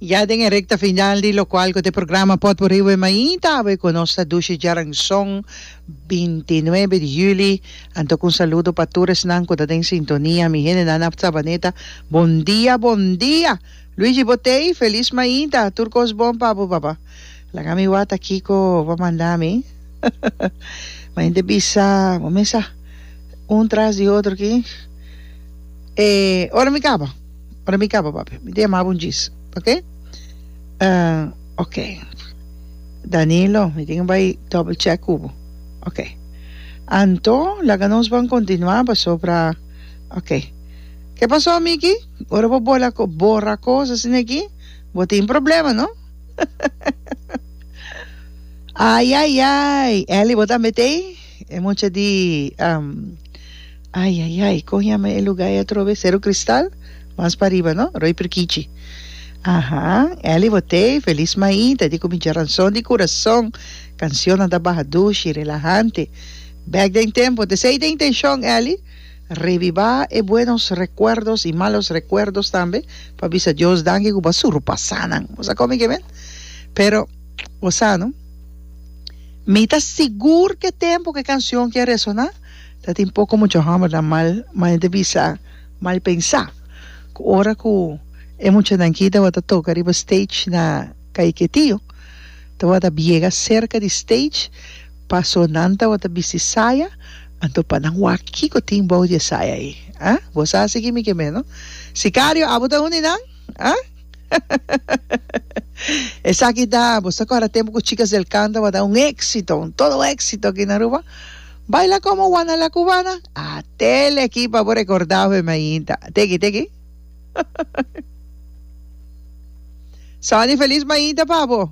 Ya den e recta final di locual cu ta e programa Potpourri Wen Mainta awe cu nos ta dushi djaranzon binti nuebe di juli. Antok un saludo pa tur esnan cu ta den sintonia. Mi hendenan na Sabaneta bon dia bon dia! Luigi Botey Feliz Mainta! Tur cos bon pa bo papa. Laga mi wata kico bo a manda mi. Mi hende bisa bo mesa un tras di otro ki e ora mi caba. Ora mi kaba papi mi ta yamabo un djis oke oke Danilo mi tin bai double check ku bo oke anto laga nos ban kontinua pasobra oke ke paso amiki ora bo bola borra kos asina aki bo tin problema no ayayay Eli bo tambe tei e mucha di. Ai ai ai con yama e lugar e atrobe Cerro Cristal? Mas pa riba no? Roy Prikichi Aha Elly Botey Feliz Maí ta di cu mi djeranzon di curason Cancionnan ta baha dushi, relahante Bek den tempo Te sei ta intencion Elly? Reviva e buenos recuerdos y malos recuerdos tambe pa bisa Dios danki cu bo a surpasa nan Bo sa come ke men? Pero Bo sa no? Mi ta sigur cu e tempo cu e cancion ke a resona. Ta tin poko mucha hòmbernan mal manera di bisa, mal pensá, ku ora ku e muchanan ki tabata toka riba stage na Kaiketiyo tabata biega serka di stage, pasó nan tabata bisti saya, anto pa nan wak kiko tin bou di e saya ei, a? Bo sa si kimi ke meno? Sikario, abo ta un di nan? A? Esaki ta, bo sa kòrda tempu ku Chicas del Can tabata un éksito, un todo éksito aki na Aruba? Baila como Juana la Cubana. A tele aquí pa bo recorda hopi mainta. Teki teki. Sunny feliz mainta pa bo.